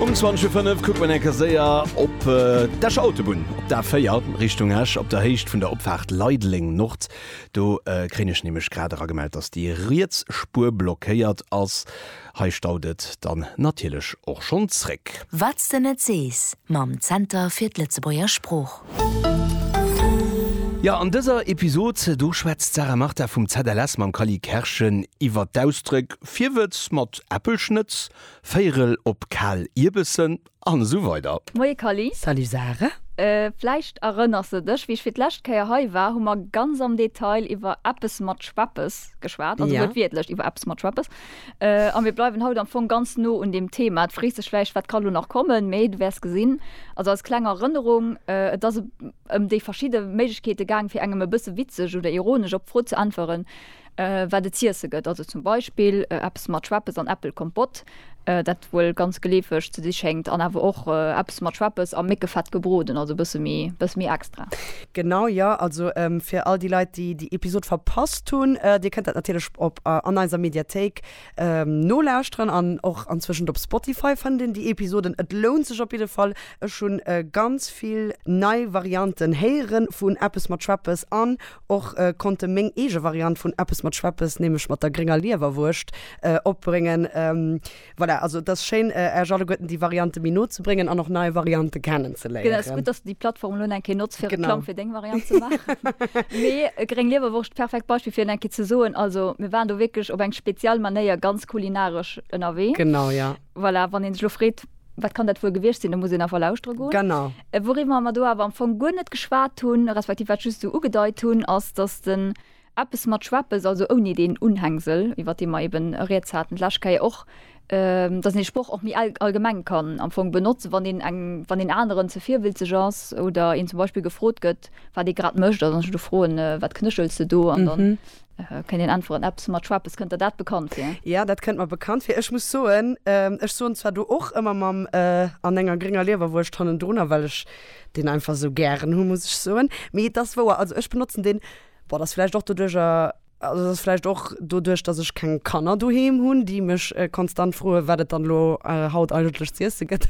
Um 20 vu 5 kuckt man enker séier op d'Escher Autobunn, op d'A4 Richtung Esch, op der Héicht vun der Opfaart Leideleng Nord. Do kréien ech nämlech grad eragemellt, dass déi riets Spuer blockéiert ass. Hei staut et dann natierlech och schonn zréck. Wat's de net sees mam Zenter fir d'Lëtzebuerger Sprooch. Jo, an dëser Episod do schwätzt d'Sarah Martha vum ZLS mam Kally Kerschen iwwert d'Ausdröck, Virwëtz mat Äppelschnëtz, Véirel op kal Ierbessen an esou weider. Moie Kally. Salut Sarah. Vläicht erënners de dech, wéi ech fir d'lescht Kéier hei war, hu mer ganz am Detail iwwer eppes mat Schweppes geschwat, also wuertwiertlech iwwer eppes mat Schweppes. A mir bleiwen haut am Fong ganz no un deem Thema. Du frees dech vläicht, wat ka lo nach kommen, mee du wäers gesinn, also als kleng Erënnerung, et ass ëm déi verschidde Méiglechkeete gaang, fir engem e bësse witzeg oder ironesch op d'Fro ze äntweren, wat et z'iesse gëtt, also zum Beispill eppes mat Schweppes an Äppelkompott, dat wuel ganz geleefeg ze si schéngt, an awer och eppes mat Schweppes a Méckefett gebroden, also e bësse méi, e bësse méi extra. Genau, jo. Also fir all déi Leit, déi déi Episod verpasst hunn, Dir kënnt dat natierlech op an eiser Mediathéik nolauschteren an och anzwëschent op Spotify fënnt een déi Episoden. Et lount sech op jidde Fall. Ech hunn ganz vill nei Varianten héieren vun eppes mat Schweppes an Och konnte meng eege Variant vun Eppes mat Schweppes, nämlech mat der grénger Liewerwurscht, opbréngen. Voilà, also et ass schéin, Äech alleguerten déi Variante méi no ze bréngen an och nei Variante kennenzeléieren. Genau, ass gutt, dass de déi Plattform elo eng Kéier notz fir Reklamm fir deng Variant ze maachen. Mee gréng Liewerwurscht, perfekt Beispill fir et eng Kéier ze soen. Also mir waren do wierklech op eng speziell Manéier ganz kulinaresch ënnerwee. Genau, jo. Voilà, wann een sech elo freet, wat kann dat wuel gewiescht sinn, da muss een einfach lauschtere goen. Genau. Wouriwwer mer do awer am Fong guer net geschwat hunn, respektiv wat ech just esou ugedeit hunn, ass, dass den Eppes mat Schweppes, also ouni deen Unhängsel, iwwert dee mer eben rieds haten d'lescht Kéier och, dass een dee Sproch och méi allgemeng kann am Fong benotzen, wann een eng, wann een aneren ze virwilzeg ass oder een zum Beispill gefrot gëtt, wat ee grad mécht, also wann ech elo froen, Wat knéchels de do? an dann. Kënnt een äntweren, eppes mat Schweppes, kënnt der dat bekannt vir? Jo, dat kënnt mer bekannt vir. Ech muss soen, ech soen zwar do och ëmmer mam an enger grénger Liewerwurscht hannendrunner, well ech deen einfach esou gären hu muss ech soen. Mee et ass wouer, also ech benotzen deen, bon dat ass vläicht och doduerch, also dat ass vläicht och doduerch, datt ech keng Kanner doheem hunn, déi mech konstant froe wat et dann elo haut eigentlech z'iesse gëtt,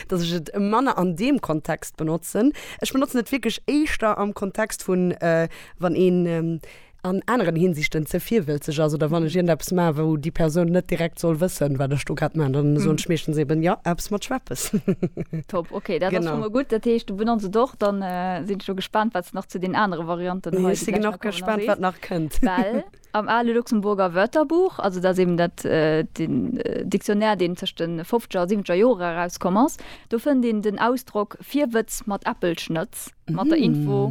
datt ech et manner an deem Kontext benotzen. Ech benotzen et wierklech éischter am Kontext vun wann een, an aneren Hinsichten ze virwëlzeg ass oder wann ech iergendeppes maachen, wou déi Persoun net direkt soll wëssen, wat ech do grad maachen, dann soen ech meeschtens eben, Jo, eppes mat Schweppes. Top, okay, dat ass scho mol gutt. Dat heescht, du benotz et och. Dann sinn ech lo gespaant, wat s de nach zu den anere Varianten hei, déi gläich nach kommen, erwäns. Ech si genug gespaant, wat nach kënnt. Well am ale Luxemburger Wörterbuch, also dat ass eben dat, den Dictionnaire, deen tëscht de fofzeger a siwwenzeger Jore erauskomm ass, do fënnt een den Ausdrock Virwëtz mat Äppelschnëtz mat der Info,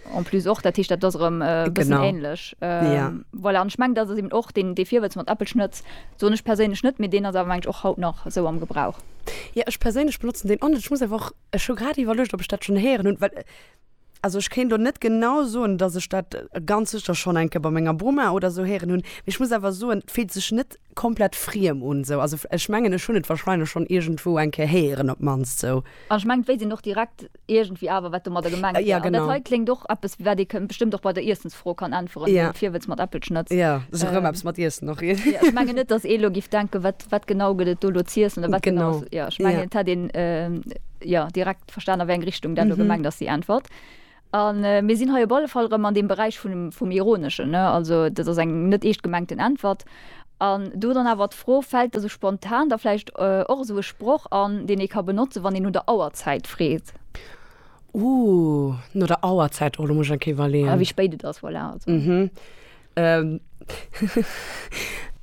En plus och, dat heescht, dat ass erëm e bëssen Genau. ähnlech. Ähm, Ja. Voilà, an ech mengen, dat ass eben och deen, dee Virwëtz mat Äppelschnëtz, soen ech perséinlech net, mee deen ass awer, meng ech, och haut nach esou am Gebrauch. Ja, ech perséinlech benotzen deen och net. Ech muss awer och, ech hu grad iwwerluecht, ob ech dat schonn héieren hunn, well, äh, also ech kéint elo net genau soen, datt ech dat ganz sécher schonn eng Kéier bei menger Boma oder esou héieren hunn, mee ech muss awer soen, et fillt sech net Komplett friem un esou. Also ech mengen ech hunn et wahrscheinlech schonn iergendwou eng Kéier héieren op d'mannst esou. An ech mengen et wéisst een och direkt iergendwéi awer wat domadder gemengt wär. An dat hei kléngt och eppes wat ee bestëmmt och bei der Iessensfro kann äntweren, wéi de Virwëtz mat Äppelschnëtz. Jo, et ass och ëmmer eppes mat Iessen och. Ech mengen net dass ee elo giff denken, wat wat genau gëtt et do elo z'iessen oder wat genau ass. Jo ech mengen et hätt een jo direkt verstan a wéi eng Richtung dat elo gemengt ass déi Äntwert. A mir sinn hei op alle Fall erëm an deem Beräich vum Ironeschen. Also dat ass eng net eescht gemengten Äntwert. An do dann awer d'Fro, Fält da sou spontan da vläicht och esou e Sproch an, deen ee ka benotzen, wann een no der Auerzäit freet? Ooh, no der Auerzäit, oh, do muss ech eng Kéier iwwerleeën. A wéi spéit et ass, voilà.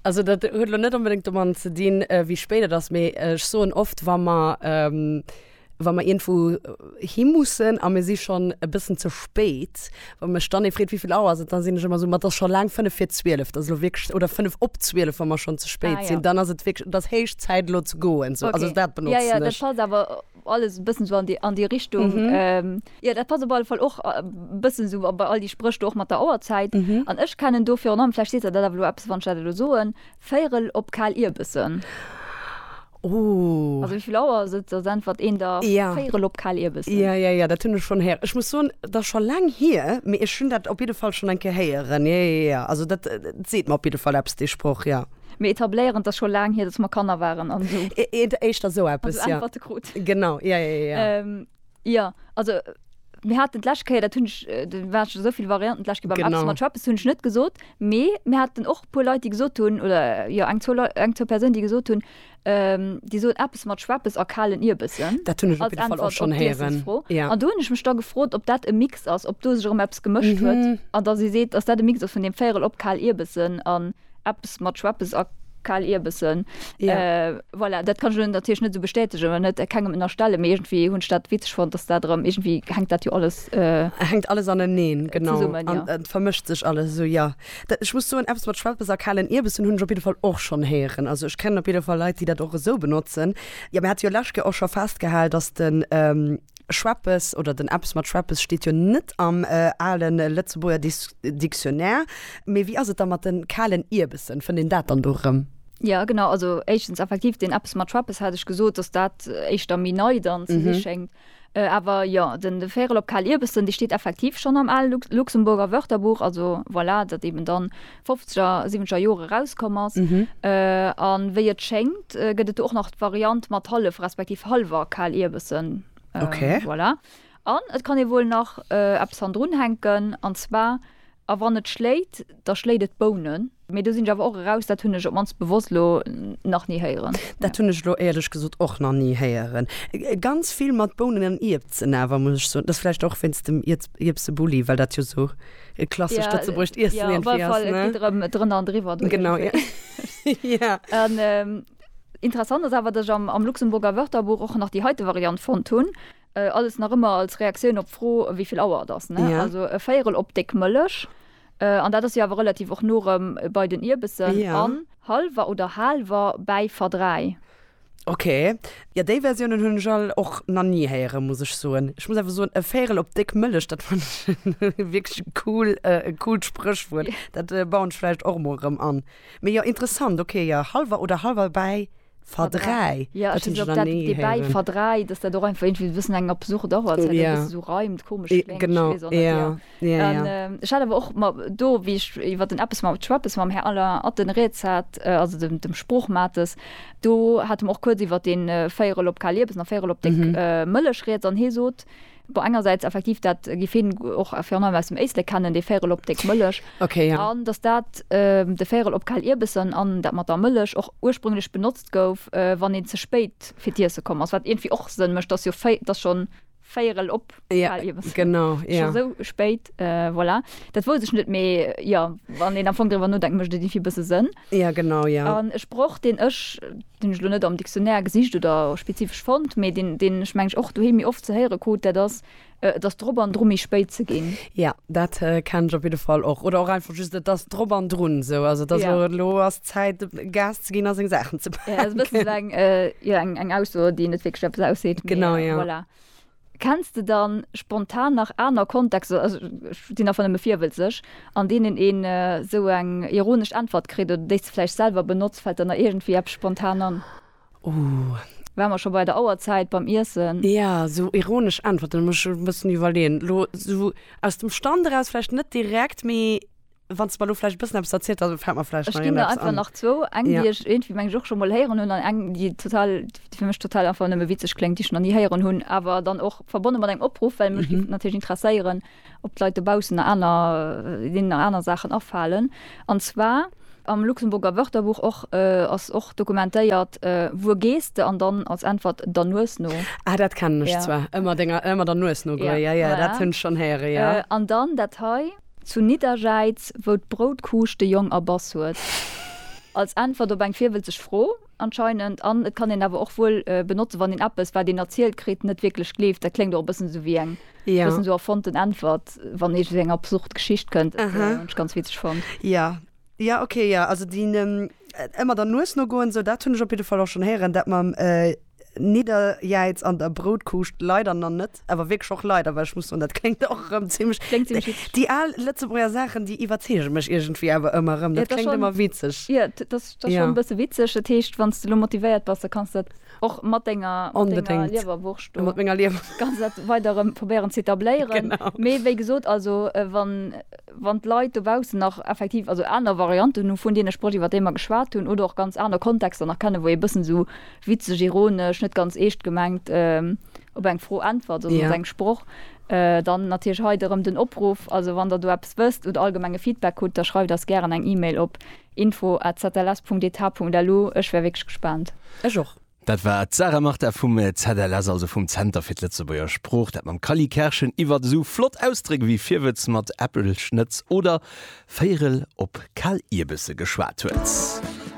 Also dat huet elo net onbedéngt domadden ze dinn, wéi spéit et ass, mee ech soen oft, wa mer. wa mer iergendwou hi mussen a mir si schonn e bëssen ze spéit, wa mech dann ee freet, wéi vill Auer ass et, da sinn ech ëmmer esou, ma et ass scho laang fënnef vir zwielef, et ass elo wierklech, oder fënnef op zwielef, wa mer schonn ze spéit Ah, ja. sinn, dann ass et wierklech, et ass héich Zäit elo ze goen, sou. Also Okay. dat Ja, benotzen ja, dat ech. passt awer alles e bëssen esou an déi, an déi Richtung. Ähm, ja, dat passt op alle Fall och e bëssen esou a bei all déi Spréch do och mat der Auerzäit. An ech kennen do virun allem, vläicht seet Der dat awer elo eppes, wann ech dat elo soen, Véierel op kal Ierbessen. Also wéi vill Auer ass et? Ass äntwert een der Véierel op kal Ierbessen. Jo, jo, jo, dat hunn ech schonn héieren. Ech muss soen, et ass scho laang hier, mee ech hunn dat op jidde Fall schonn eng Kéier héieren. Jo, jo, jo, also dat seet mer op jidde Fall eppes, dee Sproch, jo. Mir etabléieren, et ass scho laang hier, datt mer Kanner waren an esou. Éischter esou eppes, jo. Also äntwerte krut. Genau, jo, jo, jo. Jo, also mir haten d'lescht Kéier, dat hunn ech, do waren scho souvill Varianten d'lescht Kéier beim Epson mat Schappes, hunn ech net gesot, mee mir haten och e puer Leit, déi gesot hunn, oder jo eng, zwou Leit, eng, zwou Persounen, déi gesot hunn, déi soen Epes mat Schweppes a kalen Ierbessen Dat hunn ech op jidde Fall och schonn héieren. als Äntwert op d'Iessensfro. Ja. An do hunn ech mech da gefrot, ob dat e Mix ass, ob do sech erëm eppes gemëscht huet an dass ee seet, dass dat e Mix ass vun deem Véierel op kal Ierbessen an. Eppes mat Schweppes a Kaalierbessen. Ja. Voilà, dat kann ech elo natierlech net esou bestätegen oder net kengem ënnerstellen, mee iergendwéi hunn ech dat witzeg fonnt, dass dat erëm, iergendwéi hänkt dat jo alles, Hänkt alles aneneen, genau. Zesummen, jo. An et vermëscht sech alles esou, jo. Dat, ech muss soen, eppes mat Schweppes a kaalen Ierbessen hunn ech op jidde Fall och schonn héieren. Also ech kennen op jidde Fall Leit, déi dat och esou benotzen. Jo, mir hate jo lescht Kéier och scho festgehal, dass de. Schweppes oder den Eppes mat Schweppes steet jo net am ale Lëtzebuerger Dictionnaire. Mee wéi ass et da mat de kalen Ierbessen? Fënnt een dat dann do erëm? Jo, genau. Also éischtens effektiv, deen Eppes mat Schweppes hat ech gesot, dass dat éischter méi nei dann ze si schéngt. Awer jo, den Vérel op kal Ierbessen, dee steet effektiv schonn am ale Luxemburger Wörterbuch. Also voilà, datt eeben dann fofzeger, siwwenzeger Jore erauskomm ass. A wéi et schéngt, gëtt et do och nach d'Variant mat hallef respektiv hallwer Kaalierbessen. Voilà. An et kann ee wuel nach eppes hannendrun hänken, an zwar, A wann et schléit, da schléit et d'Bounen. Mee do sinn ech awer och eraus, dat hunn ech op d'mannst bewosst elo nach ni héieren. Dat hunn ech elo éierlech gesot och nach ni héieren. Ganz vill mat Bounen an Ierpzen awer, muss ech soen. Dat ass vläicht och wéinst dem Ierpsebulli, well dat jo esou. E klassescht Lëtzebuergescht Iessen Ja, op irgendwie alle Fall, ass, et ne? geet erëm drënner an driwwer. do Genau, ja. iergendwéi. Ja. An ähm, interessant ass awer, datt ech am, am Luxemburger Wörterbuch och nach déi heite Variant fonnt hunn, äh, alles nach ëmmer als Reaktioun op d'Fro, wéi vill Auer et ass, ne? Ja. Also e Véierel op déck Mëllech, äh, an dat ass jo awer relativ och no erëm bei den Ierbessen, Ja. an halwer oder haalwer bäi verdräi. Ok, jo déi Versiounen hunn ech all och na ni héieren muss ech soen. Ech muss awer soen e Véirel op déck Mëllech dat fannen ech wierklech e cool e coolt Spréchwuert. Dat bauen ech vläicht och mol erëm an. Mee jo interessant ok jo halwer oder halwer bäi verdräi dat hunn ech nach ni héieren. Verdräi, dass dat och einfach iergendwéi e bëssen eng absurd Auer ass, well dat e bësse sou reimt, komesch kléngt, ech weess och net. Ja, an, ja. Äh, ech hat awer och ma, do wéi ech iwwer den Eppes mam Schweppes mam Här Alain Atten rieds hat, äh, also dem, dem Sproochmates, do hat mer och kuerz iwwer den äh, Véierel op kal Liebes an Véierel op déck mhm. äh, Mëllech rieds an hee sot, Bo engerseits effektiv dat äh, gif hin och fir an aus dem Éisle kennen, dee Véierel op déck Mëllech. Okay, ja. An dass dat äh, de Véierel op kal Ierbessen an dat mat der Mëllech och ursprünglech benotzt gouf, äh, wann een ze spéit fir d'Iesse komm ass, wat irgendwie och Sënn mécht, dass jo Véi, dass schon véierel op ja, genau ja. Schon so spéit äh, voilà. dat wo sech net méi ja wann den am Fong drwer nodenken mcht déi fir bësse sënn ja genau ja an ech broch den ech den lo net am Dictionär gesicht oder spezifisch fand méi den den ech mengg och du he mir oft ze héiere kot der das Äh, dass drop an drum ich spéit ze gin ja dat äh, kann ich op jeden Fall och oder auch einfach just dass drop an run so also das ja. lo as Zäit Gas ze ginn a seng Saachen ze paken. Ja, dat ass eng, jo eng, eng Ausso, déi net wierklech eppes ausseet. Genau, jo. Voilà. Kenns de dann spontan nach aner Kontexter, also ech sinn einfach nëmme virwëlzeg, an deenen een esou eng ironesch Äntwert kritt oder déi s de vläicht selwer benotzt? Fält der nach iergendwéi eppes spontan an? Uh. Wa mer scho bei der Auerzäit beim Iessen. Ja, esou ironesch Äntwerten, da muss ech e bëssen iwwerleeën. Elo esou aus dem Stand eraus vläicht net direkt, mee. Wann s de mer elo vläicht e bëssen eppes erzielt, da fält mer vläicht nach iergendeppes an. Ech ginn der einfach nach zwou. Eng, déi ech iergendwéi, meng ech, och scho mol héieren hunn an eng, déi total, déi fir mech total einfach nëmme witzeg kléngt, déi ech nach ni héieren hunn, awer dann och verbonne mat engem Opruff, well mech géif natierlech interesséieren, ob d'Leit dobaussen nach aner, deenen nach aner Saachen afalen. An zwar, Am Luxemburger Wörterbuch och ass och dokumentéiert, Wuer gees de? an dann als Äntwert, Der Nues no. Ah, dat kennen ech zwar, ëmmer denger, ëmmer der Nues no goe. Jo, jo, dat hunn ech schonn héiere, jo. An dann dat hei. Zu Nidderjäiz, wou d'Broutkuusch de Jong erbass huet. Als Äntwert op eng virwëlzeg Fro, anscheinend. An et kann een awer och wuel benotzen, wann een eppes, wat een erzielt kritt, net wierklech gleeft. Dat kléngt och e bëssen esou wéi eng bëssen esou erfonnten Äntwert, wann ee sou eng absurd Geschicht kënnt. Hunn ech ganz witzeg fonnt. Jo, jo, ok, jo. Also déi ëmmer der Nues nogoen, esou, dat hunn ech op jidde Fall och schonn héieren. Dat mam. Nidderjäiz an der Broutkuuscht leider nach net, awer wierklech och leider, well ech muss soen, dat kléngt och erëm zimlech, Kléngt zimlech witzeg. Déi al Lëtzebuerger Saachen, déi iwwerzeege mech iergendwéi awer ëmmer erëm. Dat kléngt ëmmer witzeg. Jo, dat ass schonn e bësse witzeg. Dat heescht, wann s de elo motivéiert bass, da kanns du dat och mat denger Liewerwurscht do, kanns du dat weider erëm probéieren z'etabléieren. Mee wéi gesot, also wann. wann d'Leit dobaussen nach effektiv also aner Varianten hu vun deene Sprëch, iwwer déi mer geschwat hunn, oder och ganz aner Kontexter nach kennen, wou ee bëssen esou witzeg, ironesch, net ganz eescht gemengt op eng Fro äntwert oder op eng Sproch, dann natierlech hei erëm den Opruff. Also wann Der do eppes wësst oder allgemenge Feedback hutt, da schreift eis gären eng E-Mail op info at zls.dh.lu. Ech wär wierklech gespaant. Ech och. Dat war d'Sarah Martha vum ZLS, also vum Zenter fir d'Lëtzebuerger Sprooch, dat mam Kally Kerschen iwwert esou flott Ausdréck wéi Virwëtz mat Äppelschnëtz oder Véierel op Kal Ierbësse geschwat huet.